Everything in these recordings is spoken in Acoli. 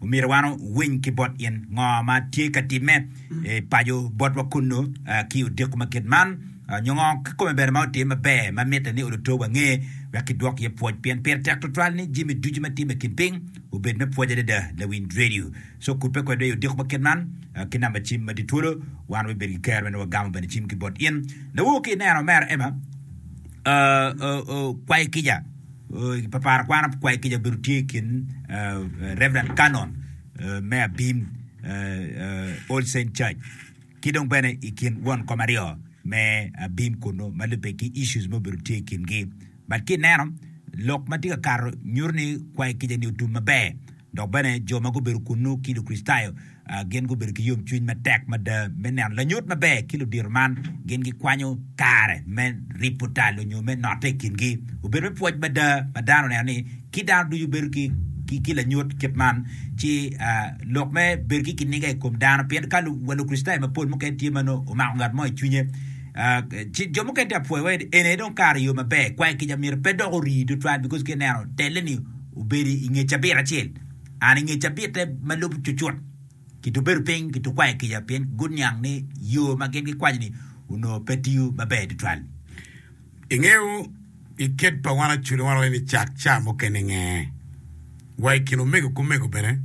Omyero wan owiny ki bot in ngo ma tye ka timme i paco botwa kunnu ki odiko ma kit man, nyo ngo kikome bene ma otim maber ma mitte ni oluto wange wek kidwok iye pwoc. Pien pire tek twatwal ni jami ducu ma timme i kin piny obed me pwoc adada. Lawiny redio co kubbe kwedwa i odiko ma kit man ki namba cim ma tye twolo. Wan wabibedo ki kero me nongo wagamo bene cim ki bot in. Lawor ki ineno, Mera Emma, okwayo kica. Papara kwano pi kwayo kica obedo tye i kin Rev. Canon me abim All Saint Church ki dong bene i kin won kom aryo me abim kunu ma lubbe ki issues ma obedo tye i kingi but ki ineno lok ma tye ka kato nyuto ni kwayo kica-ni otum maber. Dok bene, jo ma gubedo kunnu ki Lukricitayo gin gubedo ki yomcwiny matek mada me neno lanyut maber ki ludito man gin gikwanyo kare me ripo tal onyo me note i kingi. Obedo me pwoc mada ma dano oneno ni ki dano ducu bedo ki lanyut kit man, ci lok me bedo ki kiniga i kom dano. Pien ka wa Lukricitayo mapol mukene tye ma nongo omako ngat mo i cwinye, ci jo mukene tye ka pwoyowa ni, Eni aye dong kare yo maber, kwayo kica myero pe dok ori tutwal, bikoz ka ineno telle-ni, obedo i nge cabit acel, an i nge cabitte ma lubo cucut, kitubedo piny kitukwayo kica pien guniang ni yo ma gin gikwanyo-ni onongo pe tiyo maber tutwal. Ingeyo, i kit pa wan Acude wanongo ni cak ca mukene nge, wa i kin omego ki omego bene,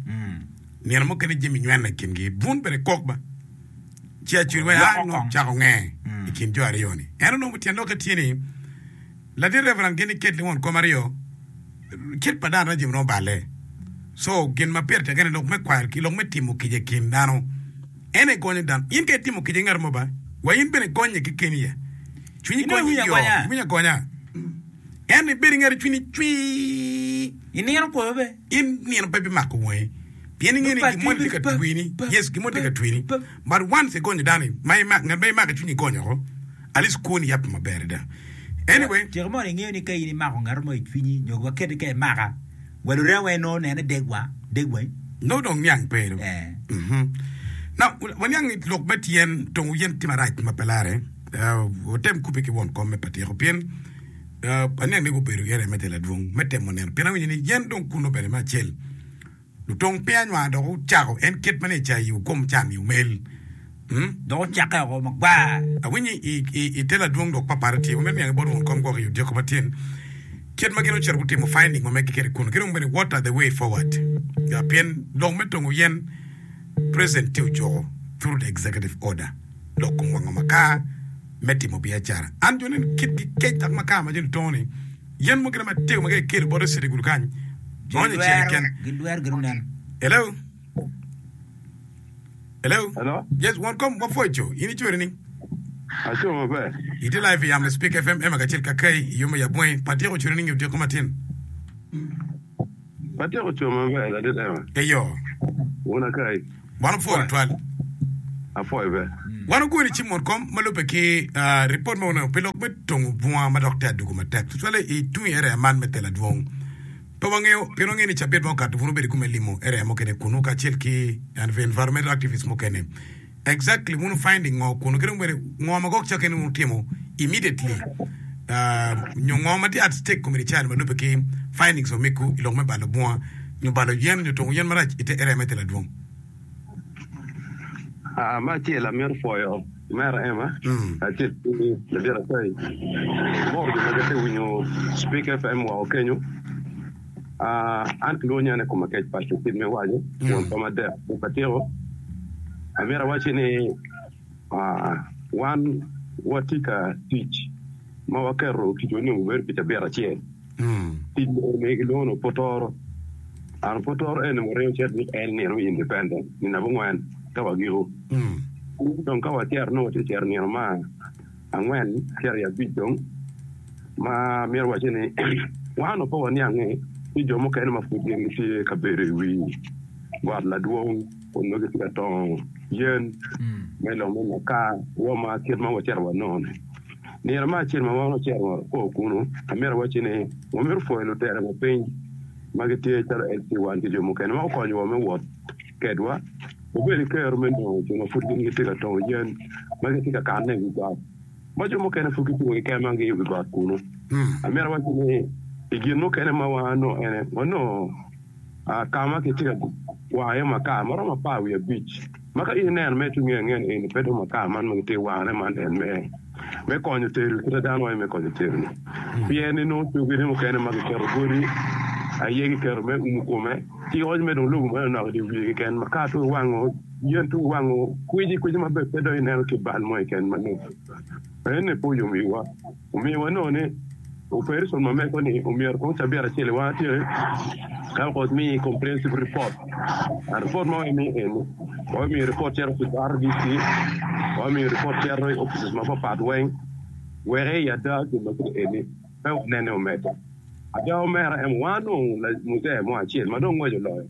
nino mukene jami nyweno i kingi, bun bene kok ba, ci Acude wa ya nongo cako nge i kin jo aryo-ni. Ento nongo tyen lok-ke tye ni, Latin Reverend Gini Ketli won kom aryo Cik pa dano rajom nongo balle. Co gin ma pire tekke ni lok me kwaro ki lok me timo kica i kin dano en aye gonyo dano. In ka itimo kica i ngat mo ba, wa in bene gonnye ki keni aye. Cwinyi gonyi i yoo, iwinyo agonya. Ento ibed i ngati cwinyi cwii. I nino koyo be? In nino pe bimako wangi, pien ingeyo ni gin moni tye ka twini. Yes, gin moni tye ka twini. But once i gonyo dano ma imak ngat ma imako i cwinyi igonyo oko at least kwoni yap maber ada anyway. Cika mono ingeyo ni ka in imako ngato mo i cwinyi nyo wa keti ka imaka wa lurema weng nongo nene degwa degwa. Nongo dong niang pe do. Now waniang ni lok me tyen tongo yen tye marac ma pe larre. Watem kubbe ki won kom me patyeko pien aniang ni gubedo area me telo adwong me temo neno pien awinyo ni yen dong kuno bene me acel. Lutong piny anywar dok ocako en kit ma ni ecai i okom can i omel. Hm. Dok ocakke oko magwar. Awinyo i, i, i te ladwong lok papara tye, ma mito niango i bot won kom gwok i odyeko ma tyen, kit ma gin ocito gutimo finding ma megi kede kunu, ki dong bene what are the way forward. Ya, pien lok me tongo yen, President tye ojuko, through the executive order, lok kom wango makar me timo biacara. An joni ni kitgi kec dok makar ma joni tongo ni, Yen mukene matego ma ka ikelo bote cito i gudo kany, gonyo i cere keken. Gidwero gin oneno. Hello? Hello? Hello? Yes, won kom wapwoco. In icweri ni? Aco maber. Itye live i yamo i Spik FM, Emma kacel ka Kay, i yo me Yabonge. Pat tyeko cweri ni nyo tyeko matin. Atyeko coo maber adada ema. Eyo. Wun Akai. Wan opwoyo twal. Apwoyo be. Wan ogoni ci mot kom ma lube ki report ma wuneno pi lok me tongo bunga ma dok tye adugu matek tutwale i tung area man me Tela Dwong. Pe wangeyo pien wangeyo ni cabit ma okato bun obedo i kume limo area mukene kunu kacel ki environmental activists mukene. Exactly wun wu find ngo kunu kit omere ngo ma gok ca kene wun wutimo immediately nyo ngo ma tye at stake kom eni cari ma lube ki findings o miku ilok me balo bunga nyo balo yen nyo tungu yen marac ite area me tela dwong. Aa me acel amito pwoyo Mera Emma acel ki Ladit Atai bot jo ma gitye winyo Speak FM woko kenyo. An kilwongo nyana i koma kec paco kit me waco won koma adek pok atyeko. Amyero awacci ni wan watye ka tic ma waketo ticwa ni obedo pi cabit acel. Tic ni kilwongo ni opotoro. An opotoro eni waringo cet wik en nino i independent nino abongwen ka wagiko. Dong ka wacero nongo watye cero nino ma angwen cito i abic dong ma myero wacce ni wan onongo pe waniange ni jo mukene ma pud gin gitye ka bedo i wi got ladwong kun nongo gitye ka tongo yen me lok me maka rwoma kit ma wacito wanongo-ni. Nino me acel ma wan ocito wa kwo kunu, amyero awacci ni wamito pwoyo lutera ma piny ma gitye calo LC1 ki jo mukene ma gukonyowa me wot kedwa. Obedo kero me dongo jo ma pud gin gitye ka tongo yen ma gitye ka kanne i wi got, ma jo mukene pud gicungo ki kemagi i wi got kunu. Amito wacci ni, i gin mukene ma wanongo en aye, wanongo ka ma kitye ka wano iye makar ma romo apar wiye abic, ma ka in ineno mere ki nge angena eni, pe dong makar man ma kitye ka wanone man en mere. me konyo tero kite dano aye me konyo tero-ni pien ni nongo coge ni mukene ma kiketo godi aye kiketo me umu kome ki oc me dong lobo ma nonok idye wiye keken ma ka to wango yen to wango kwici kwici ma pe dong ineno ki bal mo keken ma nongo ene pe oyom iwa omiwa nongo ni Opereson ma meko-ni omyero kong cabit acel i wang atyeni ka wek omiyi comprehensive report. An report ma wamimiyo eni, wamimiyo report cito ki RDC, wamimiyo report cito i offices mapapat weng wek i ada gin ma kiti eni pe wanene omedde. Ada omera en wanongo muzee mo acel ma dong ngweco loyo.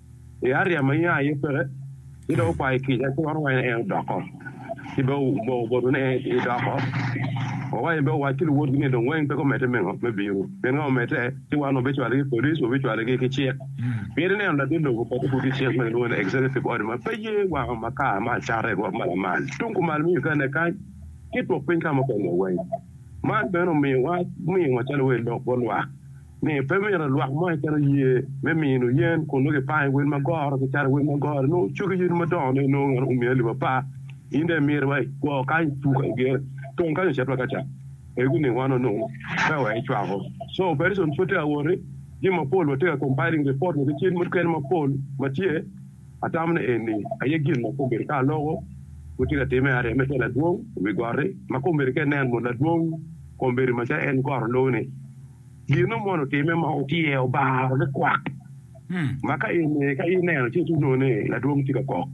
I aria ma nya aye peke, ci dong wukwayo kica ci waromo en odoko. Ci be wuboko botu ni en idoko. Wawaco be owac ki luwotgi ni dong weng pe gumedde me ngo? Me bino. Pien ka omedde, ci wan wabicwale ki police, wabicwale ki ki cik. Pien ineno latin lobo oketo pud ki cik ma kilwongo ni executive order ma pe ye wango ma kare ma acata i rwot ma lamal tung kumal me Uganda kany ki twok piny ka mukene weng. Man bene omiyo wa, omiyo wa calo welo lok bot lwak. ni pe myero lwak mo keken oye me mino yen kun nongo kipango i wel ma goro ki cato i wel ma goro ni nongo cogi yadi madongo ne nongo ngat omiyo alip apar in dong imiti wa iguo kany ipuko igero tung kany ocit wa ka ca pe guning wa nono pe wek icwako so operation pud tye ka wot ni jami mapol watye ka compiling report wa ki cen mukene mapol ma tye atamo ni eni aye gin ma kombeddi ka aloko pud tye ka timme arem me ter ladwong i wi goti ma kombeddi ka inen mot ladwong kombeddi ma ca en goro loo ni. Gin nongo mono otimme ma otyero obaro likwak ma ka eni ka ineno ci inongo ni ladwong tye ka kok,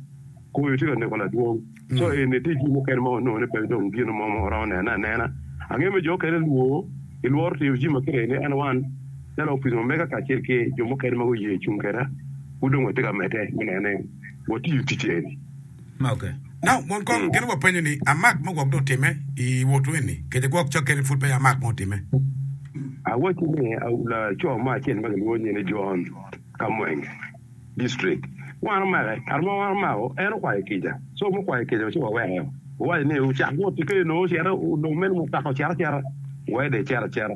koyo tye ka neko ladwong. Co eni tye gin mukene ma wanongo ni pe dong gin mo ma waromo nene anena. Angeyo me jo okene lwo i lworo tiyo jimi ma kite ni N1 calo opice omega kacel ki jo mukene ma guye cung keda pud dong watye ka mede me neno ni watiyo tic eni. Gin gupenyo ni, Amak mo gwok dong otimme i wotwu eni? Kece gwok ca kene pud peya amak mo otimme. Awacci ni, laco mo acel ma gilwongo nyine John, ka Mwenge district, wan omake. Kare ma wan omako, en okwayo kica. Co mukwayo kica-nu ci waweko. Wawaco ni, Wucak wot ki kene nongo ocito, lok mene mutoka ocito acita, wede ecit acita.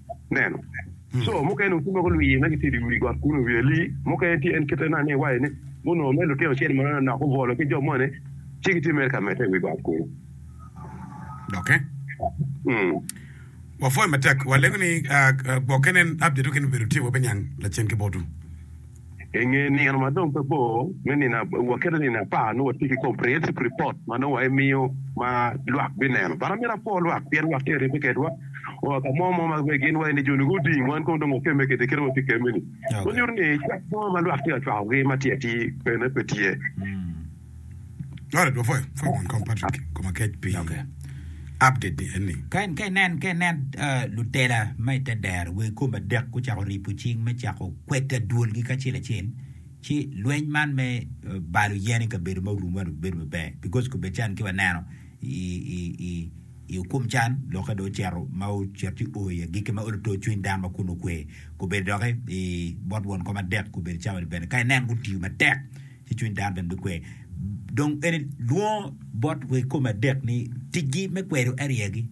neno. Co mukene onongo tye ma gulwiye ma gitye i dye wi got kunnu, ryali mukene tye en kite na ni iwaye ni gunongo mere lutino ocel ma nok obwolo ki jo moni ci gitye mere ka mete i wi got kunnu. Doki wapwoyo matek, walego ni gwokke nen update oken obedo tye wa biniang lacen ki botwu. I nge nino ma dong pe bor, me nino waketo nino apar nongo watye ki comprehensive report ma nongo wa imiyo ma lwak bineno. But amito apwo lwak pien lwak tye ka ribbe kedwa wa ka mo mo ma be gin wa eni jo ni guding wan kong dong wakemme kede kit ma watye kemme ni. Manyuto ni cwak mo ma lwak tye ka cwakogi ma tye atir bene pe tye. Noted before I form and come Patrick koma kec pi Okay. update ni eni. Ka in- ka inen ka inen ah, lutela ma i te dero wegi kom adek gucako ripo cing me cako kweta dwolgi kacel acel ci lweny man me eh, balo yen i kabedo ma orumo man obedo maber because kobedi can ki waneno i, i, i, i okum can lokke do ocito ma ocito ci o i agikki ma olo to cwiny dano ma kun okwe kobedi doki i bot won kom adek kobedi cawa ni bene ka inen gutiyo matek ci cwiny dano bene bikwe. Dong eni lwongo bot wa i kome adek ni ticgi me kwedo ariya-gi.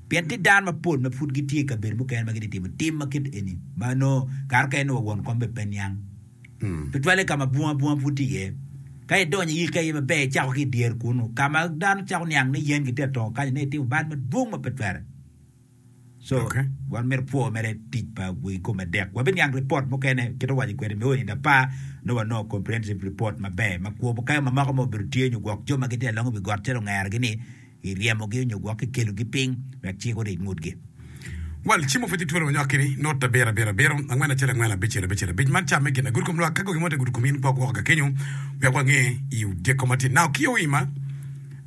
Pien tye dano mapol ma pud gitye i kabedo mukene ma gitye timo tim ma kit eni ma nongo kare mukene nongo won kom bene pe niang. Tutwalle ka ma bunga bunga pud tye iye. Ka idonyo i yikka iye maber icako ki i dyere kunnu ka ma dano cako niang ni yen gitye atongo kanyo nongo itimo bal madwong ma pe twere. So, Okay. wan myero pwo mere tic pa wegi kome adek. Wabiniang ripot mukene, kit ma waco kwede, me onindo apa, nongo wanongo comprehensive report maber, ma kwo mukayo ma moko ma obedo tye nyo gwok jo ma gitye alongo i wi got calo ongerogi ni, i ryemogi onyo gwok i kelogi piny wek cik oric ngutgi. Well, cimo pwod itwero nyokki ni, not abiro, abiro, abiro, angwen, acel, angwen, abicel, abicel, abic. Man camme gin agut kom lwak. Ka gogi mo te agut kom in gwok woko ka kenyo wek wange i odyeko matin. Now, ki oima,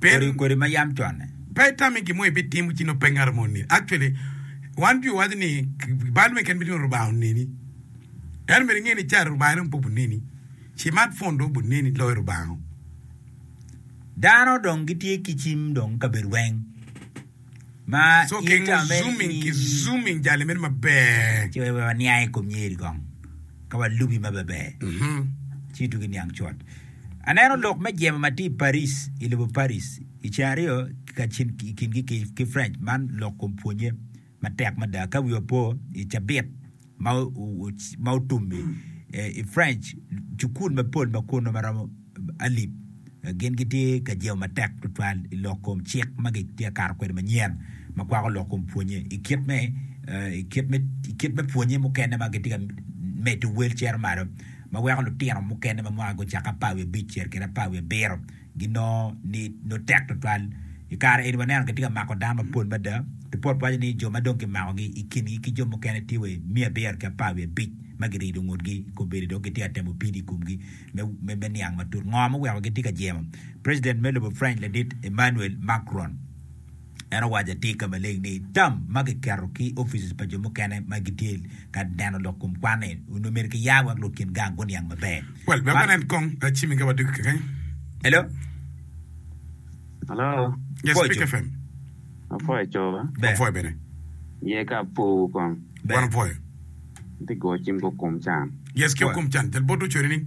Kodi kodi ma yam conne. Pe itami gin mo ibitimo ci nongo pe ngat mo oneni. Actually, wan Jwi waco ni bal me keni bitingo Rubanga oneni. Ento myero inge ni ca Rubanga dong pe obuneni. Cimat phone dong obuneni loyo Rubanga-o. Dano dong gitye ki cim dong kabedo weng. Aneno lok me jemo ma tye i Paris, i lobo Paris, i ceng aryo kacel i kingi ki French, man lok kun pwonnye matek mada ka wi opo i cabit. ma otum-mi i French, cukul mapol ma kunnu ma romo alip gin gitye ka jemo matek tutwal i lok kom cik ma gitye ka kato kwede manyen ma kwako lok kom pwonye i kit me i kit me pwonye mukene ma gitye ka medo wel cito malo ma weko lutino mukene ma mwakagi ocakke apar wiye abic cito kwede apar wiye abiro ginongo ni nongo tek tutwal. I kare eni waneno kitye ka mako dano mapol mada. Ripot waco ni jo ma dong kimakogi i kingi ki jo mukene tye wa i miya abiro ki apar wiye abic ma girido ngutgi i kombeddi dok gitye ka temo pido i komgi me niang matut ngo ma oweko gitye ka jemo preciden me lobo French ladit Emmanuel Macron. En owaco atir ka maleng ni, tam ma kiketo ki offices pa jo mukene ma gitye ka neno lok kom kwan-ni onongo myero kiya wek lok kin gang guniang maber. Wel wek wanen kong jami ka wadwogo kekeny. Hello. Hello. Yes, Pwoco. Speak FM. Apwoyo cowa. Ber. Wapwoyo bene. Ye ka apwowu kong. Ber. Wan opwoyo. Atye ka goyo cim ki okum can. Yes, ki Wa. okum can. Jal bot ducu nining?